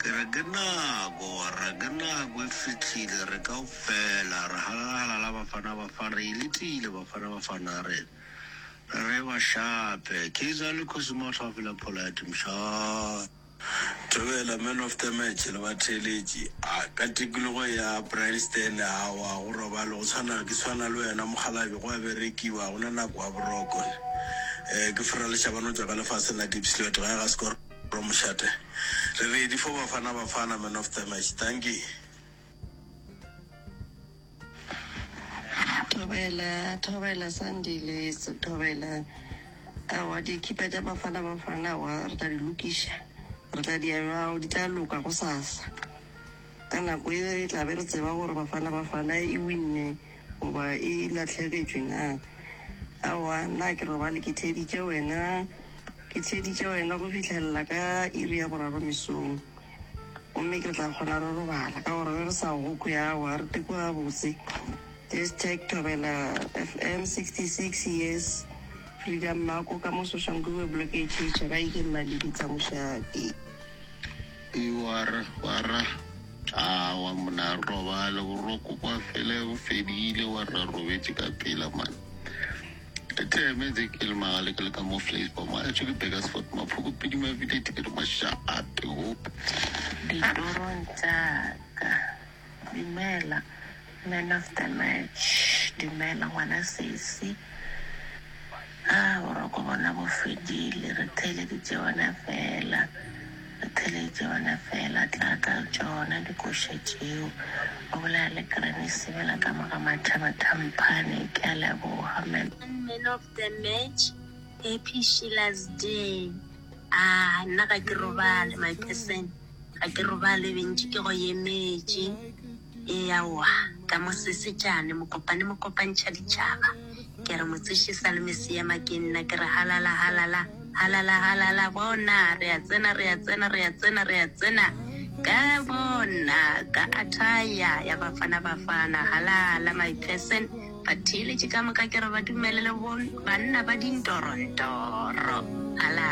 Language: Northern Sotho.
Ke re ke nako, wa re ke nako e fihlile, re kaofela re halala-halala Bafana Bafana re e letile Bafana Bafana a re re ba shape, Kaizer le Kgosi Matlhwafi la Polite mshaa. Thobela man of the match le batheeletši, a ka tikologo ya Brian Stanley aowa go robalo go tshwana ke tshwana le wena mokgalabje go a berekiwa gona nako wa boroko, ke Fera Lešabana o tšwa ka lefaseng la Diepsloot gae ga Scor. Bro Mošate, re ready for Bafana Bafana man of the match. Dankie. Thobela thobela Sandile thobela aowa dikipa tša Bafana Bafana aowa re tla di lokiša re tla di aowa di tla loka go sasa ka nako e re tla be re tseba gore Bafana Bafana e winne Goba e lahlegetšwe na? Aowa, nna ke robale ke theeditše wena, ke theeditše wena go fihlelela ka iri ya boraro mesong. Gomme re tla kgona re robala, ka gore ge re sa go kwe, aowa, re teko gabotse. Just tag Thobela FM 66 years Freedom Mako ka mo Soshanguve Block H H, ga e ke Mmalebitla mošate. Iwara wara awa mna robale boroko kwa fele go fedile wa ra robetše ka pela man teme tse ke le magale ke le ka mo flash ba ma tšhe ke beka spot maphoko pidi ma vile tiri ma sha up hope ditorong tsa ka Dumela man of the match. Dumela ngwana sesi. Haa boroko bona bo fedile re theeleditše wena fela. Re theeleditše wena fela tla ka tšona dikoša tšeo. O bolela le Granny Sebela ka mo ga Mathaba Thamphane. Ke a leboga man. Man of the match happy Sheila's day. Haa nna ga ke robale my person. Ga ke robale bentši ke go yemetše, ee aowa, ka mo sesetšane, mokopane mo kopantšha ditšhaba, ke re motseši sa le Mesiyama ke nna, ke re halala halala, halala halala, bona re a tsena, re a tsena, re a tsena, re a tsena, ka bona ka athaya ya Bafana Bafana, halala my person, batheeletši ka moka ke re ba dumelele bo banna ba dintorontoro, halala.